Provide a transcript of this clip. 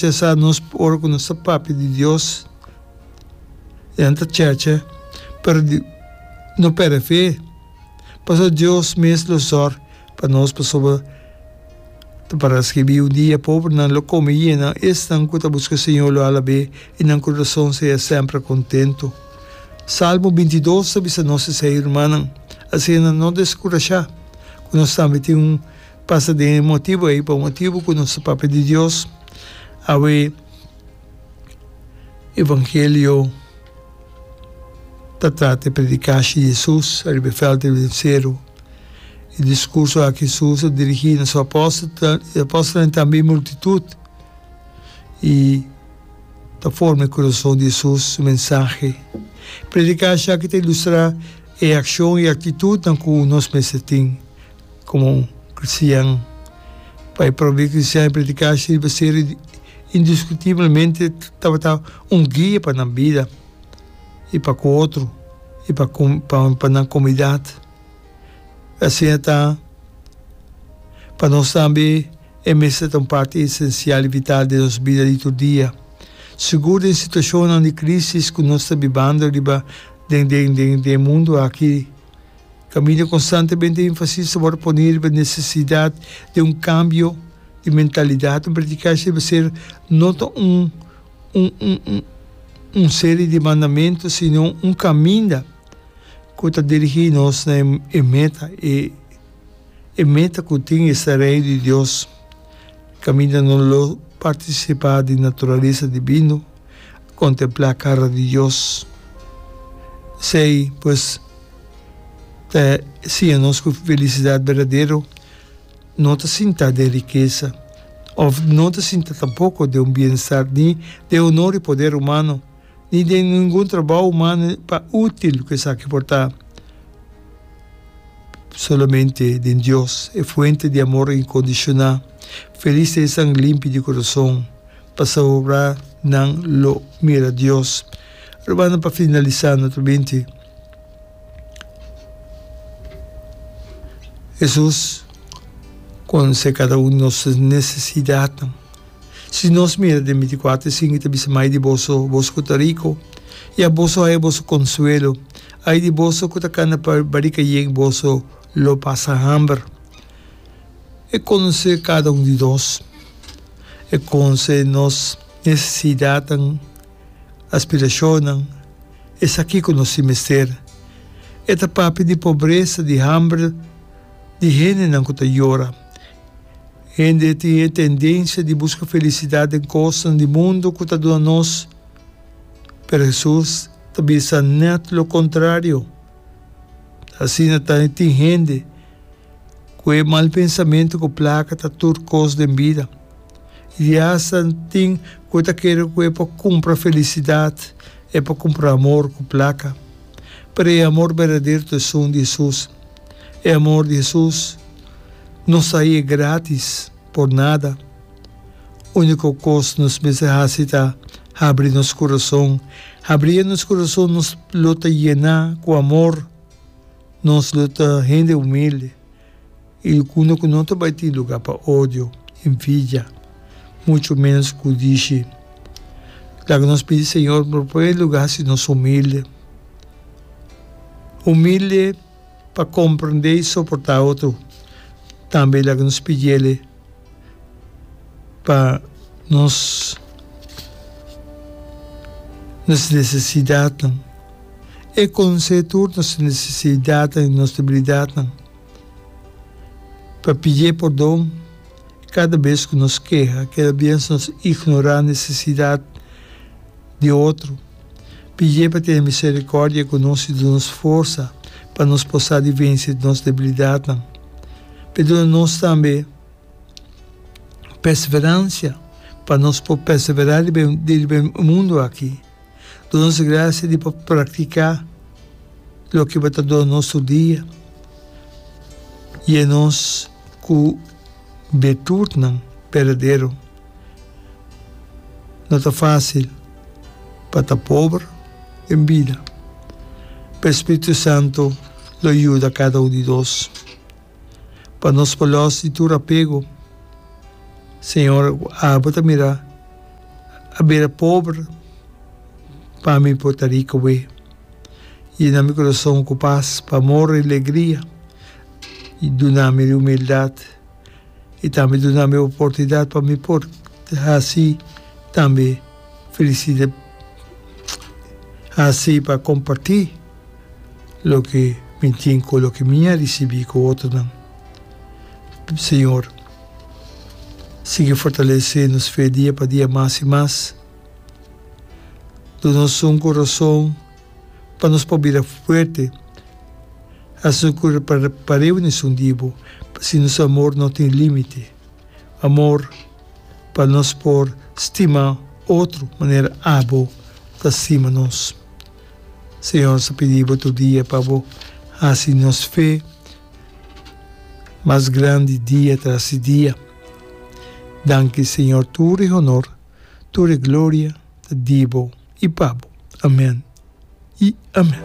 Te sa nos ora ku nos ta papia di Dios i nan ta cheche, pero di no perde fe, pasobra Dios mes lo sòr pa nos. Pasobra ta pará skirbí, Un dia pobernan lo kome yena, esnan ku ta buska Señor lo hala be, i nan kurason seya sèmper kontentu. Salmo binti i dos ta bisa nos esei, Rumannan, asina no deskurashá ku nos tambe tin un. Pasa den e motibu ei, pa un motibu ku nos ta papia di Dios, awe evangelio ta trata e predikashi di Hesus riba e vèlte di Oliveseru, e diskurso aki Hesus a dirigí na su apòstelnan, e apòstelnan i tambe e multitut, i ta forma e kurason di Hesus su mensahe. Predikashi aki ta ilustrá e akshon i aktitutnan ku nos mester tin. Komo un kristian, pa e probe kristian e prediká shi riba ser indiskutiblemente tabata un guia pa nan bida i pa ku otro i pa pa nan komunidat. Asina ta pa nos tambe e mester ta un parti esensial i vital den nos bida di tur dia, sigur den situashonnan di krísis ku nos ta bibando riba den den den den e mundu aki. Camilla constantemente enfasis ta word poni riba necesidad di un cambio di mentalidad. Un predicashi debe ser no ta un un serie di mandamentu sino un caminda cu ta dirigi nos na e meta, e meta cu tin es ta Reino di Dios. Caminda no lo participa di naturalesa divino. Contemplá cara di Dios. Esei, pues, ta siña nos cu felicidad berdadero no ta sintá den rikesa, of no ta sintá tampoco den un bienestar, ni den honor i poder humano, ni den ningun trabou humano pa útil cu esaki por ta. Solamente den Dios, e Fuente di amor incondicioná. Felis ta esan limpi di curason, Pasobra nan lo mira Dios. Robando pa finalisá no tubinti, Hesus konsé kada un di nos nesesidatnan. Si nos mira den binticuater sin, i ta bisa, Mai di boso, boso ku ta riku, ya boso haya boso konsuelo. Ai di boso ku ta kanda pa barikayeg boso! Lo pasa hamber. E conoce cada un di nos. E conce nos necesidadnan, aspiracionnan. E sa kico nos tin mester. E ta papia di pobreza, di hamber, di hendenan cu ta yora. Hende tin e tendencia di busca felicidad den cosnan di mundo cu ta duna nos. Pero Jesus ta bisa net lo contrario. Asina tambe tin hende ku e mal pensamentu ku plaka ta tur kos den bida, i asta tin ku e ta kere ku e por kumpra felisidat, e por kumpra amor ku plaka. Pero e amor berdadero ta esun di Hesus. E amor di Hesus no sai e gratis por nada. Úniko kos nos mester hasi ta habri nos kurason. Habrié nos kurason nos lo ta yená ku amor, nos lo ta hende humilde i dikundo ku no ta bai tin lugá pa odio, envidia, muchu ménos ku dishi. Laga nos pidi Señor pa promé lugá hasi nos humilde. Humilde. pa komprendé i soportá otro. Tambe e laga nos pidiéle pa nos nos nesesidatnan e konosé tur nos nesesidatnan i nos debilidatnan, pa pidié pordon kada bes ku nos keha, kada bes nos ignorá nesesidat di otro. Pidié pa tene miserikòrdia ku nos i duna nos forsa pa nos por sa di vense nos debilidatnan. P'e duna nos tambe perseveransia pa nos por perseverá riba e mundu aki. Duna nos grasia di por praktiká loke bo ta duna nos tur dia. Yena nos ku birtutnan berdadero. No ta fásil. pa ta pober den bida. Pa e Spiritu Santu lo yuda kada un di nos pa nos por los di tur apego. Señor, abo ta mira, a bira pober pa mi por ta rico bo. Yena mi corazon cu paz, pa amor y alegria y duna mi humildad. i tambe duna mi oportunidat pa mi por hasi tambe felisida hasi pa kompartí loke mi tin ku loke mi a risibí ku otronan. Señor, sigui fortalesé nos fe dia pa dia mas i mas. Duna nos un ku rason. pa nos por bira fuerte. Rasun cu pa reuni esun di bo, si nos amor no tin limite. Amor pa nos por stima otro manera abo ta stima nos. Señor sa pidi bo tur dia pa bo haci nos fe mas grandi dia tras di dia. Danki Señor tur e honor, tur e gloria. ta di bo i pa bo. Amen i amen.